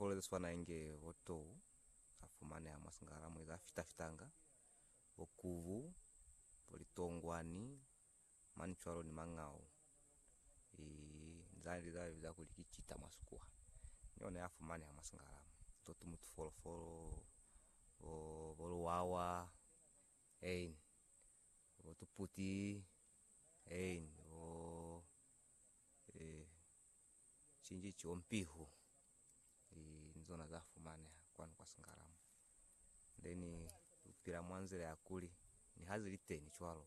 Kolo ze swana inge bo tou za fumaneha mwa singala mwe za fita-fitanga, bo kubu, bo litongwani, mani cwalo ni mangau. I za li za biza kuli ki cita mwa Sikuwa, ni ona ya fumaneha mwa singala mwe. To tumutu folofolo, bo, bo luwawa, ein, bo tuputi, ein, bo, eh. cinji ciyo mpihu i nzona za fumaneha kwanu kwa singala mo then upila mwa nzila ya kuli ni ha zili teni cwalo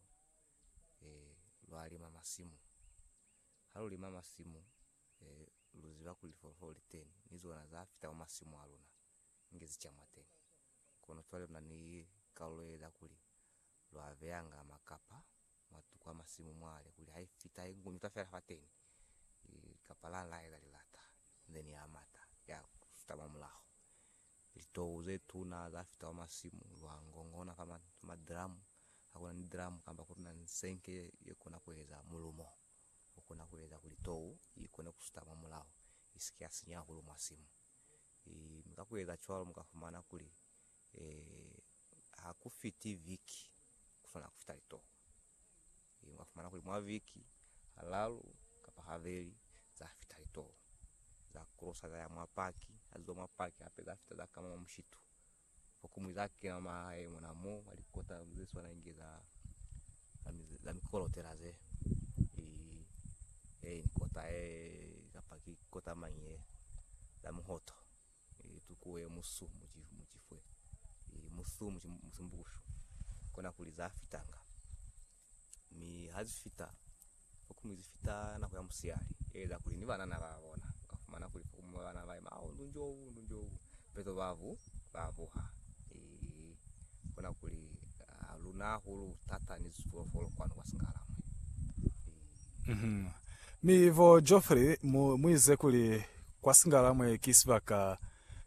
eh lwa lima masimu ha lu lima masimu eh lu ziba kuli lifolofolo li teni ni zona za fita mwa masimu a luna nge zi cha mwa teni kono cwale luna ni kalulo ye za kuli Lwa beyanga makapa mwa tuku ya masimu mwale kuli ha i fita ye ngu ni ta fela fateni kapa la la eza lilata inze ni ya mata ya suta mwa mulaho. Litou ze tuna za fita kwa masimu lwa ngongona fa madramu. Ha ku na ni dramu kamba ku na ni senke ye, ye kona ku eza mulumo o kona ku eza kuli tou i kone ku suta mwa mulaho i si ke ya sinya hahulu mwa simu. Mi ka ku eza cwalo mu ka fumana kuli, ha ku fiti viki, ku swana ku fita litoho. Ee, mwa fumana kuli mwa viki ha lalu kapa ha veli za fita litoho, za krosa za ya mwa paki, ha ziba mwa paki hape za fita za kama mwa mushitu. Fokumwi za kena mwa mahae mona mo, mwa likota ze swana inge za, za mikolotela ze. Ee, ee, ni kota ee, kapa ki kota mañi ee, za muhoto. E, tukuwe musu muci, mucifwe. E, musu muci, musi mbukushu. Kona kuli za fitanga. Mi ha zi fita, fokumi zi fita nako ya musiali. E, za kuli ni banana ba bona. Uka fumana kuli fokumi ba banana ba ima, au, ndu njobu, ndu njobu. Peto babu, ba buha. E. I bona kuli ha lu na hahulu thata ni zipolofolo kwanu kwa Singalamwe. I. Mhm. Mi bo Geoffrey mu, mu ize kuli kwa Singalamwe ki sibaka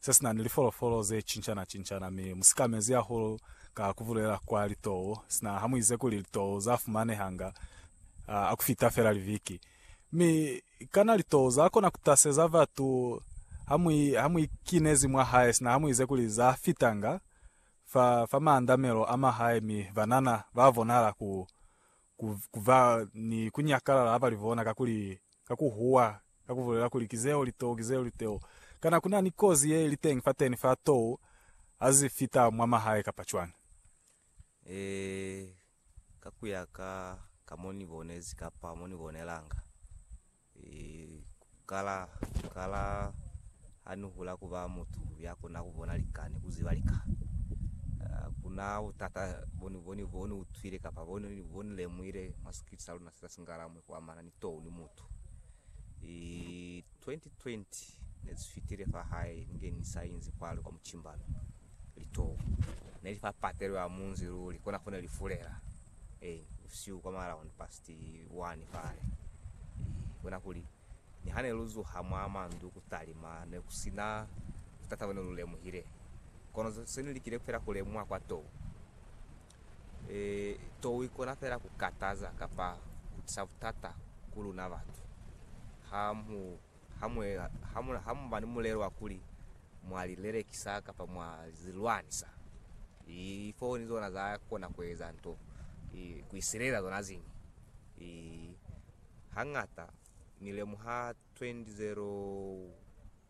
se si na ni lipolofolo ze cincana-cincana, mi mu sikamezi hahulu ka ku bulela kwa litou, sina ha mu ize kuli litou za fumanehanga ha ku fita fela liviki. Mi kana litoo za kona ku taseza batu ha mu, ha mu ikinezi mwa hae sina ha mu ize kuli za fitanga fa, fa maandamelo a ma hae mi banana ba bonahala ku, ku, ku ba ni ku nyakalala ha ba li bona kakuli, ka ku huwa, ka ku bulela kuli, Ki zeo litoo, ki zeo litoo. Kana ku na ni kozi ye li teñi fateni fa too ha zi fita mwa mahae kapa cwañi? Ee, Ka ku ya ka, ka mo ni bonezi kapa mo ni bonelanga, ku kala, ku kala ha ni hula ku ba mutu ya kona ku bona lika ni ku ziba lika. Ku na butata bo ni, bo ni, bo ni utwile kapa bo ni, bo ni lemuhile mwa sikiliti sa luna se sa singalamu kwa amana ni tou ni mutu. 2020 ne zi fitile fa hae ni nge ni sa inzi kwale kwa mucimbano. Litoo ne li fa patelo ya munzi luli, kona fo ne li fulela eeni busihu kwa ma around past one fale. Ehe, bona kuli ni ha ne lu zuha mwa mandu ku talima, ne ku si na butata bo ne lu lemuhile, kono se ni likile fela ku lemuha kwa too. Tou ikona feela ku kataza kapa ku tisa butata ku luna batu ha mu ba ni mulelo wa kuli mwa li lelekisa kapa mwa li lwanisa. Lifooni zona za kona ku eza nto ku isilelela zona ziñwi. Hañata ni lemuha 20.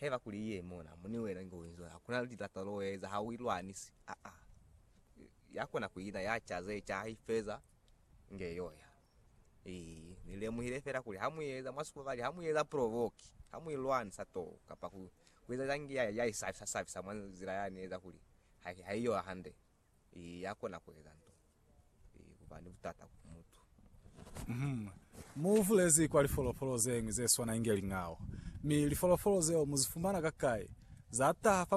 Haiba kuli i ye mona, mo ni wena inge u inzwa, hakuna lilato lo eza ha u i lwanisi. Aa. Ya kona ku ina, ya ca ze ca, ha i feza, inge yo ya. Ii, Ni lemuhile fela kuli ha mu eza, mwa sukubali, ha mu eza provoke, ha mu i lwanisa too, kapa ku, ku eza cani, ya, ya i sabisa sabisa mwa nzila ya ni eza kuli ha, ha i yo hande. Ee, ya kona ku eza nto ye ku ba ni butata ku mutu. Mm. Mu bulezi kwa lifolofolo ze ñwi ze swana inge lingao. Mi lifolofolo zeo mu zi fumana kakai? Za taha fa